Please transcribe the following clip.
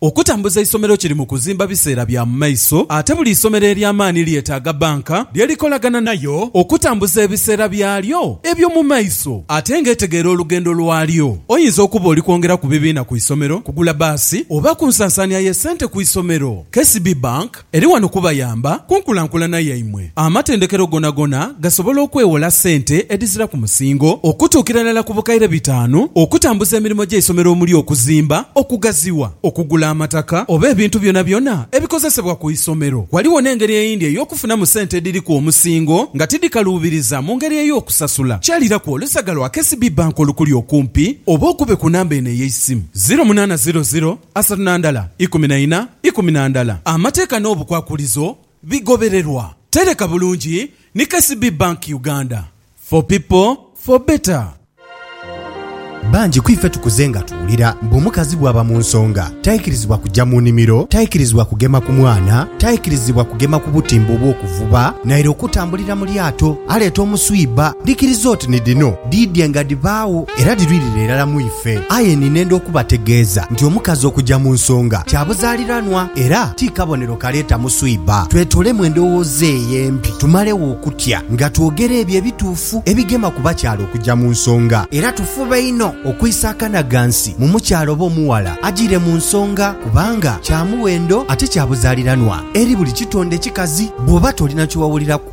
Okutambuza eisomero kiri mu kuzimba biseera bya mu maiso ate buli isomero ery'amaani lyetaaga bbanka lye likolagana nayo okutambuza ebiseera byalyo eby'omu maiso ate ng'etegeera olugendo lwalyo. Oyinza okuba oli kwongera ku bibiina ku isomero, kugula bbaasi oba ku nsansaania y'essente ku isomero. KCB Bank. Eri wano kubayamba ku nkulankulana yaimwe. Amatendekero gonagona gasobola okwewola sente edhizira ku musingo okutuukira irala ku bukaire bitaanu okutambuza emirimo gy'eisomero omuli okuzimba, okugaziwa, okugula amataka oba ebintu byonabyona ebikozesebwa ku isomero. Ghaligho n'engeri eyindi ey'okufunamu sente edhiriku omusingo nga tidhikaluubiriza mu ngeri ey'okusasula. Kyaliraku olusaga lwa KCB Bank olukuli okumpi oba okube ku namba eno ey'eisimu, ziro munaana ziro ziro, Asatu na ndala ikumi na ina, ikumi na ndala Amateeka n'obukwakulizo bigobererwa. Tereka bulungi ni KCB Bank Uganda, for people, for better. Bangi ku ife tukuze nga tuwulira mbu omukazi bw'aba mu nsonga taikirizibwa kugya mu nimiro, taikirizibwa kugema ku mwana, taikirizibwa kugema ku butimba obw'okuvuba naire okutambulira mu lyato aleeta omuswiba. Likiriza oti ni dhino dhiidhye nga dhibaagho era dhirwirire irala mu ife. Fe. Aye ninenda okubategeeza nti omukazi okuja mu nsonga kya buzaaliranwa era ti kabonero kaleeta muswiba. Twetolemu endowooza eyo empi tumalegho okutya nga twogera ebyo ebituufu ebigema ku bakyala okuja mu nsonga. Era tufube inho okwisa akanaghansi mu mukyala oba omughala ajiire mu nsonga kubanga kya muwendo ate kya buzaaliranwa eri buli kitonde kikazi. Bw'oba tolina kye wawuliraku,